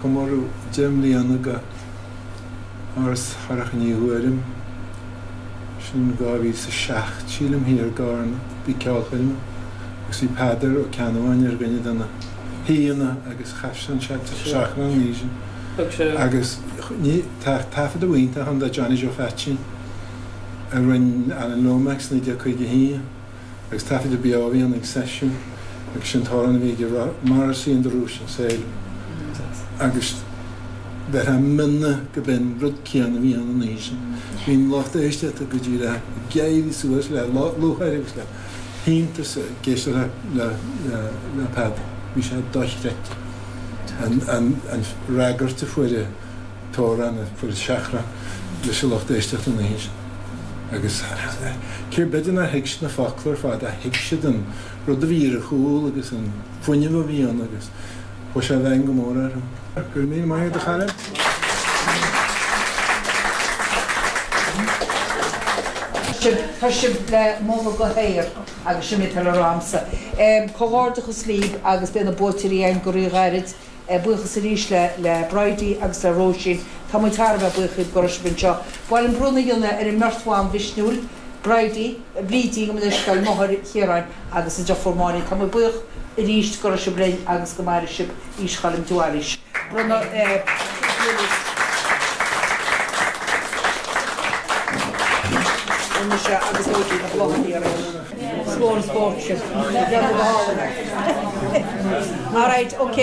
Comóradh deich mbliana de Áras Shorcha Ní Ghuairim, sin 2007 sílim, thiar i gCarna, bhí ceolchoirm agus bhí Peadar Ó Ceannabháin ar dhuine de na haoíanna agus chas sé an Seachrán an oíche sin agus tá taifead amháin iontach ann de Johnny Joe Pheaitsín a rinne Alan Lomax 1951, agus taifead beo a bhí ann ag seisiún agus sin an t-amhrán a bhí aige á rá Morrissey and the Russian Sailor agus beagnach gurbh in an rud céanna a bhí ann an oíche sin. Bhí an lucht éisteachta go díreach ag éirí suas le le lúcháir agus le hiontas ag éisteacht le le le Peadar. Bhí sé dochreidte an an an fhreagairt a fuair an t-amhrán a fuair an Seachrán leis an lucht éisteachta an oíche agus cé b'fhéidir nár thuig siad na focla ar fad ach thuig siad an rud a bhí ar a chúl agus an fuinneamh a bhí ann agus chuaigh sé i bhfeidhm go mór orthu. Go raibh míle maith agat a chara. Tá sibh le moladh go haer agus sin mé tar arámsa. Comhghairdeachas libh agus beidh buaiteoir againn go ríghairid. Buíochas arís le Bridie agus le Róisín. Tá muid thar a bheith buíoch go raibh sibh linn anseo. Ba mhaith liom bronnadh a dhéanamh ar an mbeirt bhan mhisniúil, Bridie, Bríd, gabh mo leithscéal, máthair Chiaráin agus a dheirfiúr Máirín. Tá muid buíoch arís go raibh sibh linn agus go maire sibh aois Choilm de Bhailís. Slán spóirt sibh. Dearmad a thálann. Alright, ok.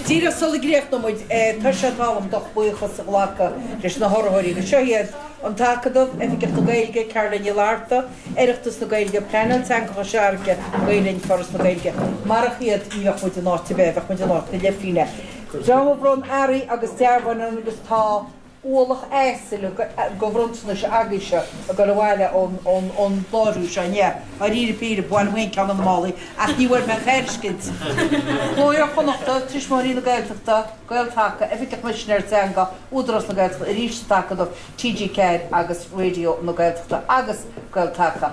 Díreach sula gcríochnaímid, tá sé tábhachtach dom buíochas a ghlacadh leis na hurraitheoirí agus seo iad, An tAcadamh, Oifigeach na Gaeilge, Ceardlann Uí Fhlatharta, Oireachtas na Gaeilge, Pleanáil Teanga Chois Fharraige, Gael-Linn, Foras na Gaeilge. Marach iad ní bheadh muid in áit ar bith, bheadh muid in áit na leithphingine. Dream a bhronn earraí agus dearbháin orainn agus tá. ualach asail go bhronntanais agaibhse ag goil abhaile ón láithriú seo inniu. Dáiríre píre, ba mhaith liom féin ceann de na málaí ach ní bhfuair mé aon tairiscint. Cló Iar-Chonnachta, Tuismitheoirí na Gaeltachta, Gael-Taca, Oifig an Choimisinéara Teanga, Údarás na Gaeltachta, Arís An tAcadamh, TG4 agus Raidió na Gaeltachta agus Gael-Taca.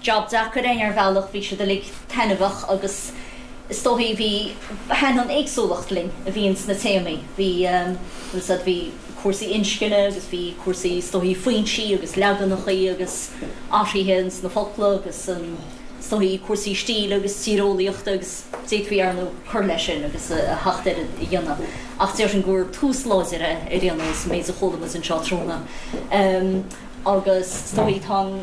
Job deacair é ar bhealach, bhí siad uilig taitneamhach agus is dóigh bhí, thaithin an éagsúlacht linn a bhí ins na téamaí. Bhí, as I said, bhí cúrsaí inscne agus bhí cúrsaí is dóigh foinsí agus leaganacha agus athruithe ins na focla agus an, is dóigh cúrsaí stíle agus tíreolaíochta agus d'fhéadfaí arnú cur leis sin agus a theacht ar a dhéanamh ach déarfainn gur tús láidir é ar aon nós, an méid a chuala muid anseo tráthnóna. Agus is dóigh tá an.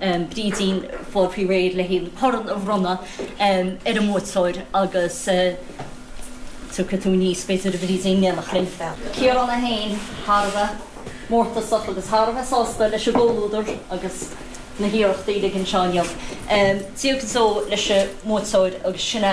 Brídín ag fáil faoi réir leis an corn a bhronnadh ar an mbuaiteoir agus tiocfaidh tú aníos, b'fhéidir, a Bhrídín, Bheadh Ciarán é féin thar a bheith mórtasach agus thar a bheith sásta leis an gcomhluadar agus na hiarrachtaí uilig anseo inniu. Dia go deo leis an mbuaiteoir agus sin é